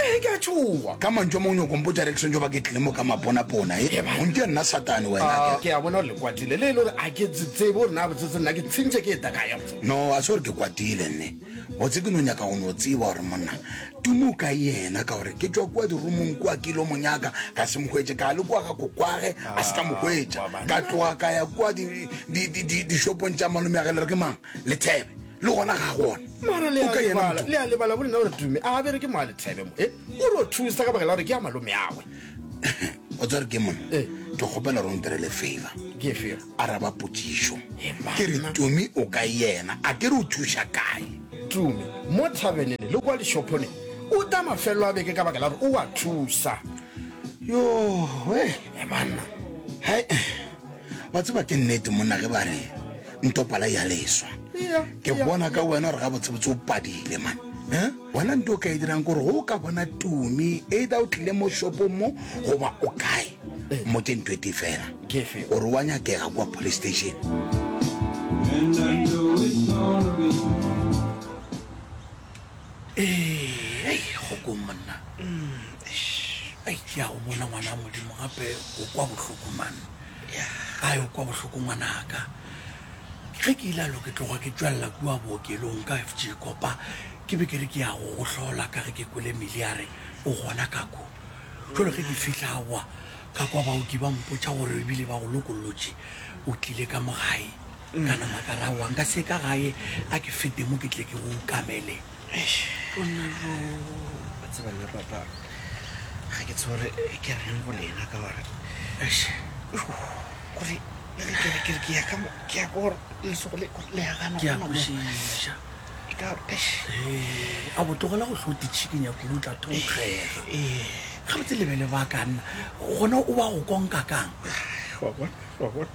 Ee, ke a tšhoga. Ka mantšu a mangwe, nyoko mpotša re ke swantšo ba ke tlile mo ka maponapona. E, eba ntša nna satane wena. A, ke a bona gore le kwatile, le e le gore a ke tsetsebe gore na botsetse nna ke tshintšhe ke eta kae gabotse. No, a se gore ke kwatile nne. Botse ke no nyaka go no tseba gore monna Tumo o ka yena, ka gore ke tšwa kua dirumong kua ke ilo mo nyaka, ka se mo hwetše, ka le kua ga kokwage, a se ka mo hwetša. Ka tloga ka ya kua di, di, di, di, di shopong tša malome ya ge le re ke mang? Lethebe. le gona ga gona o ka yena le a lebala bolena gore tume a bere ke moa lethebe mo e o re o thusa ka bakela gore ke ya malome agwe o tsare ke mone eh. ke kgopela gore o nterele favor araba potsiso ke re tume o ka yena a ke re o thusa kae tume mo thabenene le kwa lešophone o ta mafelelo a beke ka bakela gore o wa thusa yo e banna ba tseba ke nnete monna ge ba re ntopala ya leswa ke bona ka wena gore ga botsebotse o padile man eh? wena nto o ka e dirang gore go o ka bona tumi either o tlile mo shopong mo goba o kae eh. mo ke nto e te fela gore wa nyakega kwa police station And I know it's gonna be ee go kong monna ai ke ya go bona ngwana a modimo gape o kwa bohloko mane a o kwa bohloko ngwanaka ge ke ile alo ke tloga ke tswelela kua bookelong ka f g kopa ke be ke re ke ya go go hlola ka ge ke kwele mele ya re o gona ka ko jalo ge ke fitlha boa ka kwa baoki ba mpotsa gore ebile ba go lokolotše o tlile ka mogae Nka nama ka raowa, nka se ka gae a ke fete mo ke tle ke o kamele. Ponalo, ba tseba nna papa, ga ke tsebe gore ke reng go lena ka gore kore kere ke ya ka mo ke ya gore lesogo le le ya gana ke ya kwešiša e ka a botogela go hlote chicken ya kudu tla thonkgega ga botse lebele ba ka nna gona o ba go konka kang wa bona wa bona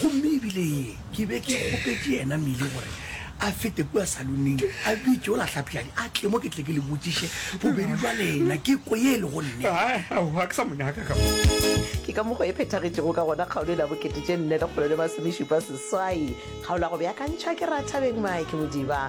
Gomme e bile ye ke be ke kgopetše yena Millie gore a fete kua saloneng, a bitše o lahlapšadi a tle mo ke tle ke le botšiše bobedi bja lena, ke kwe ye e lego nnete. Aowa, ke sa mo nyaka ka mo. Ke ka mokgwa e phethagetšego ka gona kgaolo e na bokete tše nne lekgolo le masomešupa seswai. Kgaolo ya go beakantšha ke Rathabeng Mike Modiba.